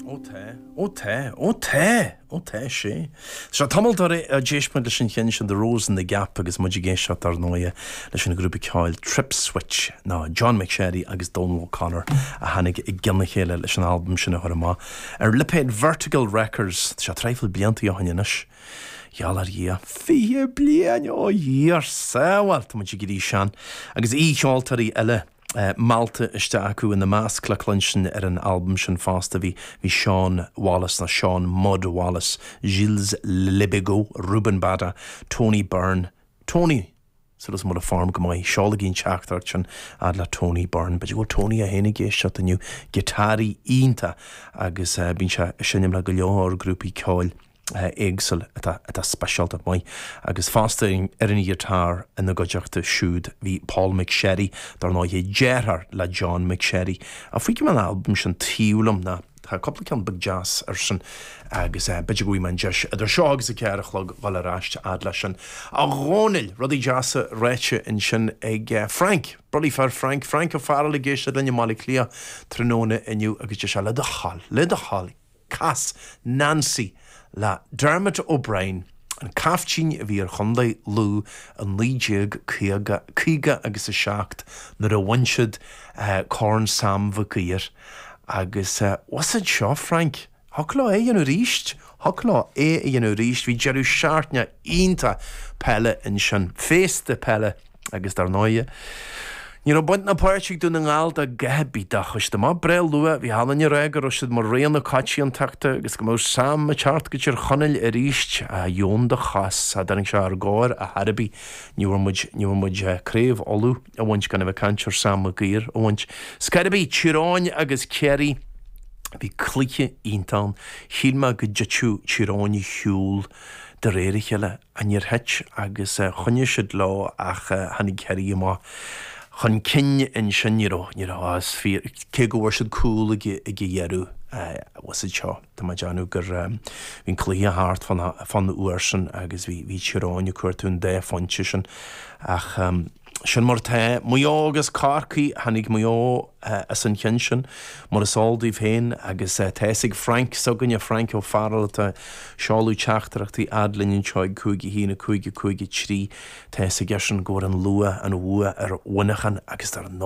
Ó tá, ó tá, ó tá, ó tá sé, sea. Sea, tamall ó d'éist muid leis an cheann sin The Rose in the Gap agus muid ag éisteacht dar ndóighe leis an ghrúpa ceoil Tripswitch, nó John McSherry agus Donal O'Connor a tháinig i gcionn a chéile leis an albam sin a chur amach, ar lipéad Vertical Records, sea, traidhfil blianta ó shin anois, gheall ar Dhia, fiche bliain, ó Dhia ár sábháil, tá muid ag éirí sean, agus aoi-cheoltóirí eile. meallta isteach acu. Ina measc le cluinstin ar an albam sin fosta bhí Shaun Wallace, nó Shaun 'Mudd' Wallace, Gilles Le Bigot, Ruben Bada, Tony Byrne, Tony! Súil agam go bhfuil an form go maith, seolaigí an teachtaireacht sin fhad le Tony Byrne. B'fhéidir go bhfuil Tony é féin ag éisteacht inniu. Giotáraí iontach agus bíonn sé ag seinm le go leor grúpaí ceoil. éagsúla atá speisialta maith agus fosta ar an ghiotár ina gcuideachta siúd bhí Paul McSherry, dar ndóigh, deartháir le John McSherry. Á, fágfaidh mé an albam sin taobh liom ná tá cúpla ceann beag deas air sin agus b'fhéidir go bhfaighidh mé an deis idir seo agus a ceathair a chlog dul ar ais a fhad leis sin. A Dhónaill, rudaí deasa ráite ansin ag Frank, bulaí fir Frank, Frank O'Farrell ag éisteacht linn i mBaile Átha Cliath tráthnóna inniu agus deir sé le do thoil, le do thoil, cas Nancy le Dermot O'Brien, an caiftín a bhí ar Chondae Lú i 1950, 50 agus a 7 nuair a bhain siad Corn Sam Mhic Uidhir agus bhfuil a fhios agat seo Frank? Thiocfadh leo é a dhéanamh arís, thiocfadh leo é a dhéanamh arís, bhí deireadh seachtaine iontach peile ansin, féasta peile agus dar ndóighe, ní raibh baint ná páirt ag Dún na nGall dá gcatha bídeach. Is cuma, breá luath, bhí an uile dhuine ag rá go raibh siad mar rogha na coitiantachta agus go mbeadh Sam ag teacht go Tír Chonaill aríst, ach dheamhan a chos dá dtáinig sé ár gcomhair ar chor ar bith, ní bhfuair muid, ní bhfuair muid craobh Uladh a bhaint gan a bheith ag caint ar Sam Mag Uidhir a bhaint. Ar scor ar bith, Tír Eoghain agus Ciarraí, bhí cluiche iontach ann, shíl mé go dtitfeadh Tír Eoghain ar shiúl, de réir a chéile, ach níor thit agus choinnigh siad leo ach tháinig Ciarraí amach chun cinn ansin, ní raibh, ní raibh, is fíor, cé go bhfuair siad cúl ag an dheireadh, bhfuil a fhios agat seo, tá mé ag déanamh gur, bhí an cluiche thart fán uair sin agus bhí Tír Eoghain ag cuartú an dá phointe sin ach. Sin mar atá. Maigh Eo agus Corcaigh. Tháinig Maigh Eo as an cheann sin, mar is eol daoibh féin, agus tá fhios ag Frank s'againne, Frank Ó Fearghail, atá ag seoladh teachtaireachtaí fhad linn anseo ag cúig, a haon, a cúig, a cúig, a trí, tá fhios aige sin go bhfuair an Lú an bhua ar Mhuineachán agus ar